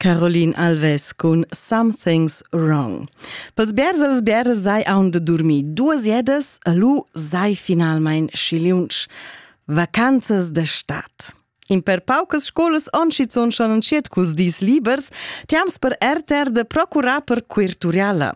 Caroline Alves cun Something's Wrong. Pels bers als bers sai aun de dormir duas jedas, a lu sai finalmein schiliunsch vacanzas de stat. In per paucas scolas oncizzon schon entschiet culs dis libers, tiams per RTR de procurar per quirturiala.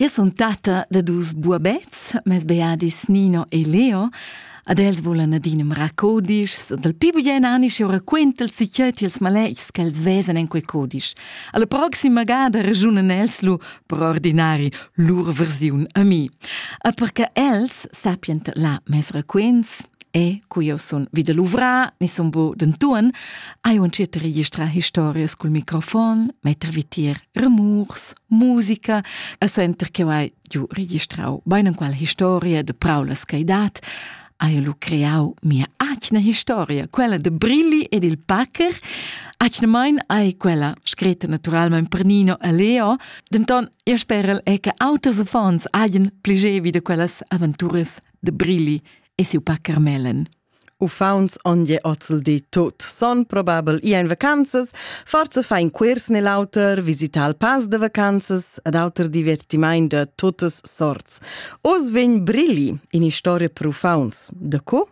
Io sun tatta da dus buabets, mes beadis Nino e Leo, ad els volan adina codischs, dal pi bugien anisch eu raquinta'ls si cheu tils maletgs ch'els vezan en quei codisch. Alla proxima gada ragiunan els lu per ordinari lur versiun a mi. A perche els sapien la mes raquints, e cu io sun vida luvrà, ni sun bo dentuan, ai uncet registra historias cul microfon, metter vitir rumurs musica a center che hai giu registrau beinenqual historia de praulas caidat ha lu creau mia atgna historia, quella de Brilli ed il Packer, atgnamain ai quella scretta naturalmente per Nino e Leo, denton io sperel è che auters affons hagen pligevi de quellas aventuras de Brilli e siu Packer Mellen. Uffants on je ozldi tut, son probabel i ein vacanzas, forza fa in quirs nel auter, visita al pass de vacanzas ed auter divertimaint de tuttas sorts. Oz vegn Brilli in historia per uffants. De co?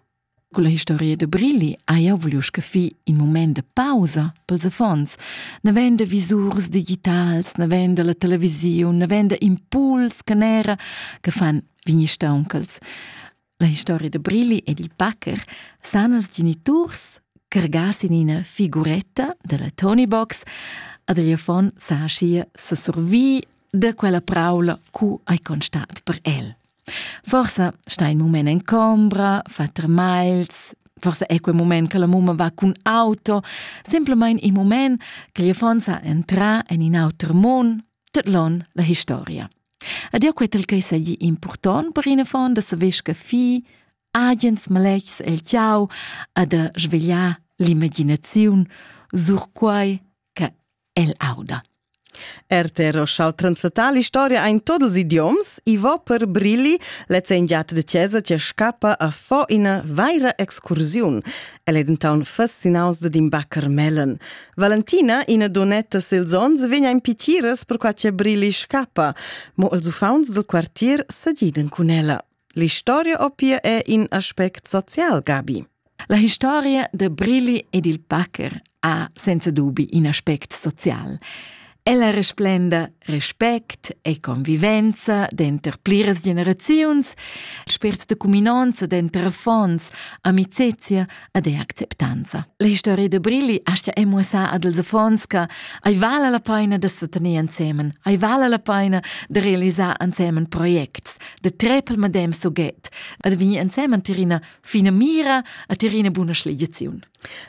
Con la historia de Brilli ha io voglio scafi in moment de pausa pels affons. Ne ven de visurs digitals, ne ven de la televisiun, ne ven de impuls canera che fan vigni stauncals. La historia da Brilli ed il packer san els geniturs cargas in ina figuretta della Tony Box ad egli affon sa schia se survi de quella praula cu hai constat per el. Forse sta in moment en combra, fa termails, forse è quel moment che la mumma va cun auto, semplicemente il moment che gli fonsa entra en in auter mondo, tot l'on la historia. Ed jau quai ch'ei seigi impurtont per in affon da saver scaffir agens maletgs el tgau e da svegliar l'imaginaziun sur quai che el auda. RTR Roschal Transatal Historia ein todos ils idioms, i va per brilli, lezza in giat de chiesa che scappa a fo ina vaira excursiun. El è denton fascinaus de din Carmelen. Valentina, ina donetta sils onns, vegna in pitiras per qua che Brili scappa, mo els uffaunts dal quartier segidan cun ella. L'historia opia è in aspect social, Gabi. La historia de Brili ed il Packer ha senza dubi in aspect social. Ella resplenda respect e convivenza denter pliras generaziuns, spért de cuminonza denter affons, amicezia ed e acceptanza. La historia de Brilli astia è muossà ad els affons che ai vala la paina de setener ansemen, ai vala la paina de realisar ansemen projects, de trepel madem soget, ad vi ansemen tirina fina mira a tirina buna schligiaziun.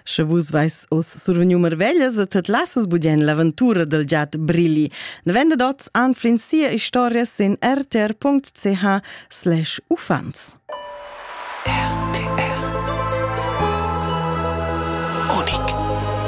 Sche vus veis oz survegniu marveglias e tet lassas budien l'aventura del giat Brili, ne venda dots anflin sia historia sin rtr.ch/ufans. RTR